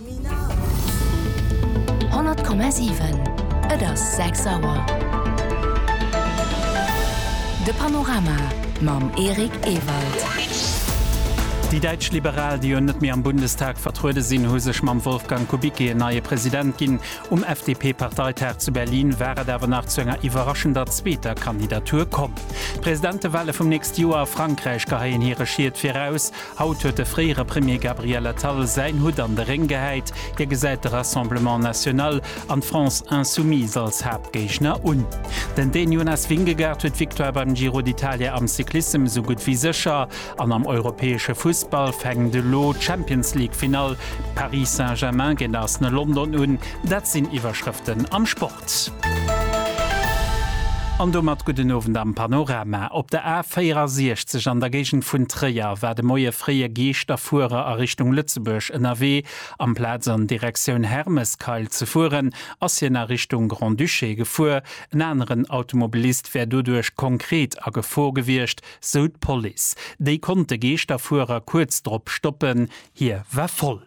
100,7 Et ass 6 Auer. De Panorama mam Eric Ewald. Déi däitsch Liberal, déi jo net méi am Bundestag vertruede sinn, hu sech mam Wolfgang Kubicki en neie President ginn. Um FDP-Parteitag zu Berlin war et awer nach zu enger iwwerraschender zweeter Kandidatur komm. D'Presidentewale vum nächste Joer a Frankräich geheien hire Schied viraus. Haut huet de fréiere Premier Gabriel Attal säin Hutt an de Réng gehäit. Hie gesäit de Rassemblement National an d'France Insoumise als Haaptgéigner un. Den Dän Jonas Vingegaard huet d'Victoire beim Giro d'Italia am Cyclissem esou gutt wéi sécher. An am europäesche Fussball fänkt elo d'Champions League-Finall Paris Saint-Germain géint Arsenal London un. Dat sinn Iwwerschrëften am Sport. An domat gudden Owend am Panorama. Op der A 64 an der Géigend vun Tréier war de Moie fréi e Geeschterfuerer a Richtung Lëtzebuerg ënnerwee. Amplaz an Direktioun Hermeskeil ze fueren, ass hien a Richtung Grand-Duché gefuer. En aneren Automobilist wär doduerch konkret a Gefor gewiescht, sou d'Police. Déi konnt de Geeschterfuerer kuerz drop stoppen, hie war voll.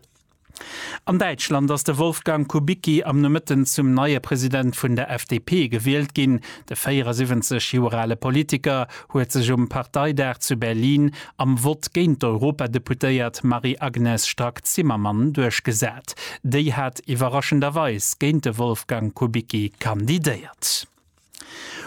An Däitschland ass de Wolfgang Kubicki am Nomëtten zum neie President vun der FDP gewielt ginn. De 74 Joer ale Politiker huet sech um Parteidag zu Berlin am Vott géint d'Europadeputéiert Marie-Agnes Strack-Zimmermann duerchgesat. Déi hat iwwerraschenderweis géint de Wolfgang Kubicki kandidéiert.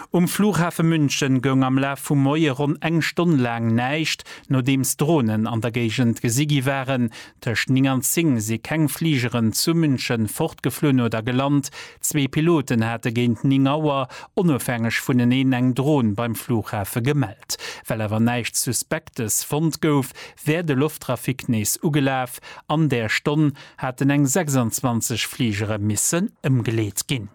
Um Flughafe München goung am Laf vum Moie ronn eng Stonn laang näischt, nodeems Dronen an der Géigend gesi gi waren. Tëscht 9 an 10 si keng Fligeren zu München fortgeflunn oder gelant. Zwee Piloten hate géint 9 Auer onofhängeg vuneneen eng Dron beim Flughafe gemellt. Well awer näischt Suspektes fonnt gouf, wär de Lofttrafic nees ugelaf. An där Stonn haten eng 26 Fligere missen ëmgeleet ginn.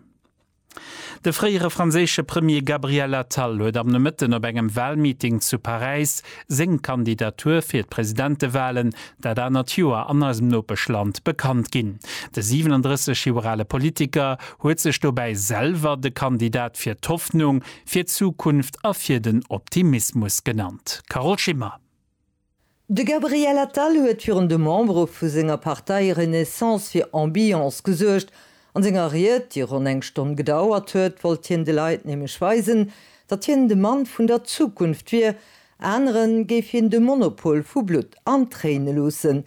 De fréiere franséische Premier Gabriel Attal huet am Nomëtten op engem Walmeeting zu Paräis seng Kandidatur fir d'Presidentewalen dat anert Joer an eisem Nopeschland bekannt ginn. De 37 Joer ale Politiker huet sech dobäi selwer de Kandidat fir d'Hoffnung, fir d'Zukunft a fir den Optimismus genannt. Carole Schimmer. De Gabriel Attal huet virun de Membere vu senger Partei Renaissance fir Ambiance gesuergt. An senger Ried, déi ronn eng Stonn gedauert huet, wollt hien de Leit nämlech weisen, datt hien de Mann vun der Zukunft wier. Anere géif hien de Monopol vu Blutt an Tréine loossen,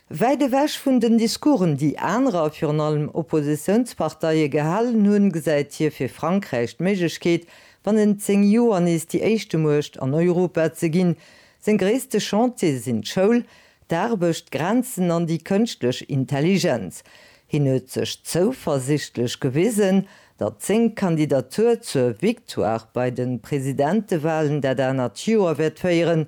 Wäit ewech vun den Discoursen, déi anerer, virun allem Oppositiounsparteie gehalen hunn, gesäit hie fir Frankräich d'Méiglechkeet, bannent 10 Joer nees déi éischte Muecht an Europa ze ginn. Seng gréisste Chantiere sinn d'Schoul, d'Aarbecht, d'Grenzen an déi kënschtlech Intelligenz. Hien huet sech zouversiichtlech gewisen, datt seng Kandidatur zur Victoire bei de Presidentewalen dat anert Joer wäert féieren,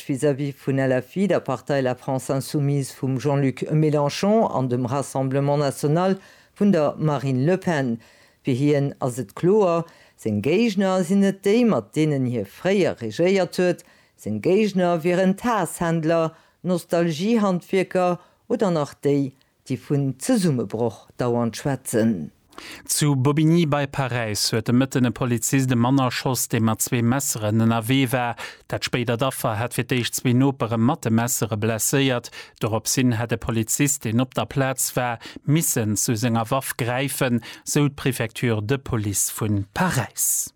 Recht vis-à-vis vun LFI, der Partei La France Insoumise vum Jean-Luc Mélenchon an dem Rassemblement National vun der Marine Le Pen. Fir hien ass et kloer, seng Géigner sinn net déi, mat deenen hie fréier regéiert huet. Seng Géigner wieren d'Haass-Händler, d'Nostalgie-Handwierker oder nach déi, Déi vun Zesummebroch dauernd schwätzen. Zu Bobigny bei Paräis huet de Mëtten e Polizist e Mann erschoss, dee mat zwee Messeren ënnerwee war. Dat spéidert Affer hat fir d'éischt zwee Nopere mat de Messere blesséiert. Dorops hin hätt e Polizist, deen op der Plaz war, missen zu senger Waff gräifen, sou d'Prefecture de Police vu Paräis.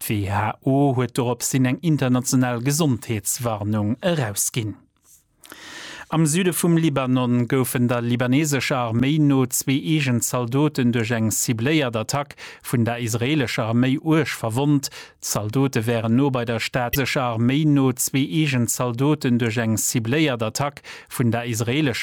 D'WHO huet dorops hin eng international Gesondheetswarnung erausginn. Am Süde vum Libanon goufen der libaneesescher Arméi no zwee eegen Zaldoten duerch eng cibléiert Attack vun der israeelescher Arméi uerg verwonnt. D'Zaldote wären no bei der Stad Beirut an de Lëfträim vun der Stad Beirut an de Lëfträim vun Israel goufen d'Attacke vun der israeelescher Arméi no zwee eegen Zaldoten duerch eng cibléiert Attack vun der israeelescher